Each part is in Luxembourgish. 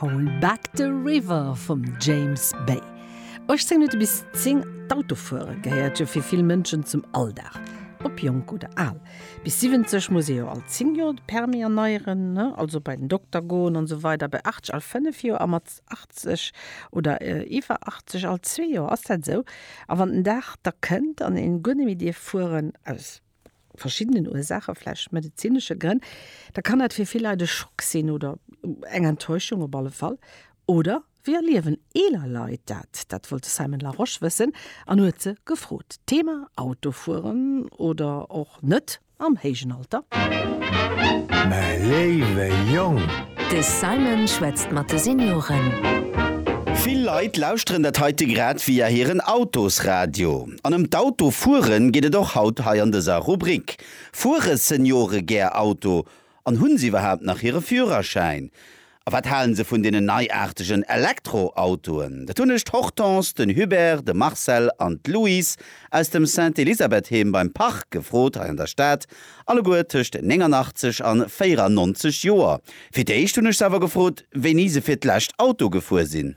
Hold Back the River vum James Bay. 18 Minutte bis 10, D'Autofuere gehéiert jo fir vill Mënschen zum Alldag, ob jonk oder al. Bis 70 muss ee jo all 10 Joer de Permis erneieren, also bei den Dokter goen an esou weider, bei 80 all 5 Joer a mat 80 oder iwwer 80 all zwee Joer. Ass dat esou? A wann den Dag da kënnt an een guer net méi dierf fueren, aus. verschiddenen Ursaache, vläicht medezinesche Grënn, da kann dat fir vill Leit e Schock sinn oder eng Enttäuschung op alle Fall. Oder wéi erliewen eeler Leit dat? Dat wollt de Simon Larosche wëssen an huet se gefrot. Thema, Autofueren oder och net am héijen Alter. Mäi léiwe Jong! De Simon schwätzt mat de Senioren. Vill Leit lauschteren dat heite grad via hiren Autosradio. An ëm d'Auto fueren geet et och haut hei an dëser Rubrik. Fuere Seniore gär Auto an hunn se iwwerhaapt nach hire Führerschäin? A wat halen se vun deenen neiaartegen Elektroautoen? Dat hunn ech d'Hortense, den Hubert, de Marcel an d'Louise aus dem Sainte-Elisabeth-Heem beim Parc gefrot hei an der Stad, alleguer tëscht 89 an 94 Joer. Fir d'éischt hunn ech se awer gefrot, wéini se fir d'lescht Auto gefuer sinn.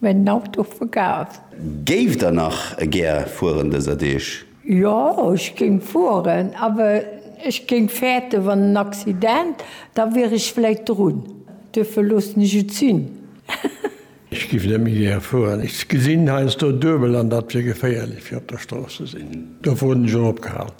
Mä den Auto verkaf. Géift der nach gär fueren dëser Deeg? Jo, ech géing fueren, awer ech géing fäerten, wann en Accident, da wier ech vläit drun. Duerfir loossen ech et sinn. Ech géif net méi gär fueren. Ech gesinn heiansdo duebel an dat wier geféierlech fir op der Strooss ze sinn. Dofir hunn ech och opgehal.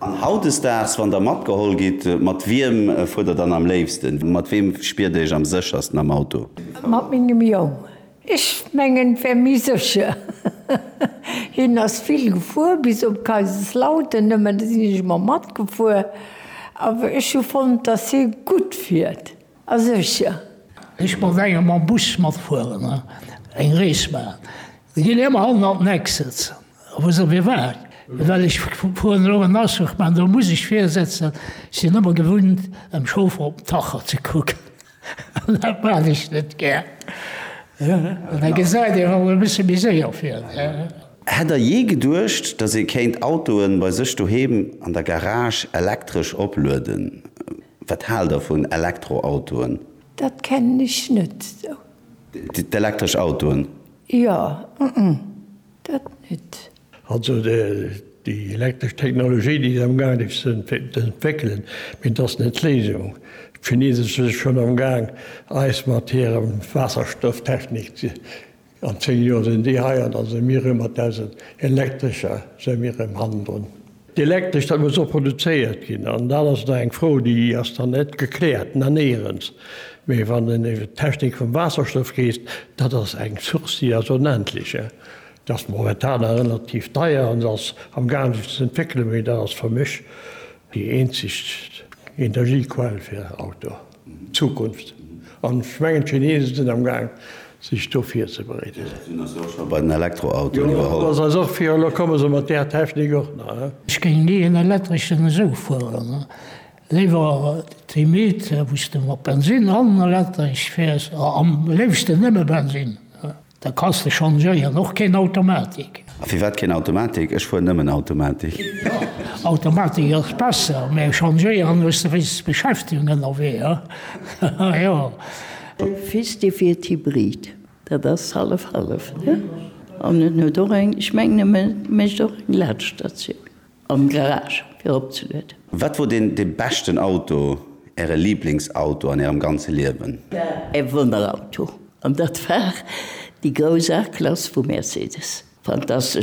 An hautdesdaags, wann der matgeholl gitt, mat wiem fuert der dann am léifsten? Mat weem spiert der iech am séchersten am Auto? Mat mengem Jong. Ech mengen, et wär méi sécher. Hien ass vill gefuer, bis op Kaiserslautern nëmmen, do sinn ech ëmmer matgefuer. Awer ech hu fonnt, dass hie gutt fiert. A sech, jo. Ech mat engem mam Bus matfueren a eng Rees maachen. Si ginn ëmmer hannen an den Eck sëtzen, wou se mir waren. Well ech fueren elo en Aschech, mä do muss ech vir sëtzen. Ech sinn ëmmer gewunnt, dem Chauffer op den Tacho ze kucken. An dat maan ech net gär. An da gesäit een emol e bësse méi séier vir. Hätt Der jee geduecht, dass ee kéint Autoe bei sech doheem an der Garage elektresch oplueden? Wat haalt der vun Elektroautoen? Dat kennen ech net sou. D'elektresch Autoen? Jo, dat net. Also déi elektresch Technologie, déi si amgaangen ech ze entwéckelen, mee dat ass net d'Léisung. D'Chineese si schonn amgaang eis mat hirem Waasserstofftechnik ze. An 10 Joer sinn déi hei an da si mir erëm mat eise Elektrescher si mir erëm hannendrun. D'Elektresch, dat muss och produzéiert ginn an dat ass da eng Fro, déi ass dann net gekläert. Dann néierens, mee wann en iwwert d'Technik vum Waasserstoff geesst, dat ass eng Source, déi ass onendlech. Dat ass momentan nach relativ deier an se ass am gaangen sech ze entwéckelen, mee dat ass fir mech déi eenzeg Energiequell fir Auto. Zukunft. An ech mengen d'Chinesen sinn am Gaang sech do virzebereeden. Déi sinn eis jo och scho bei den Elektroautoen iwwerholl. Jo, dat ass eis och virun, elo komme se mat där Technik och nach. Ech géing ni en elektreschen esou fueren, léiwer d'Hybride wou s de mat Bensin an elektresch fäers, am léifsten nëmme Bensin. Da kanns de changéieren, och keen Automatik. A firwat keen Automatik? Ech fueren nëmmen Automatik. Automatik ass besser, mä changéieren hues de wéinstens Beschäftegung ënnerwee, ha jo. De Fils de wiert Hybrid, dat ass hallef hallef, ne? An en huet och eng, ech mengen e mécht och eng Laadstatioun. Am Garage fir opzelueden. Wat wor den den beschten Auto, äre Lieblingsauto an ärem ganze Liewen? E Wonnerauto, an dat war déi grouss A-Klass vu Mercedes. Fantastesch!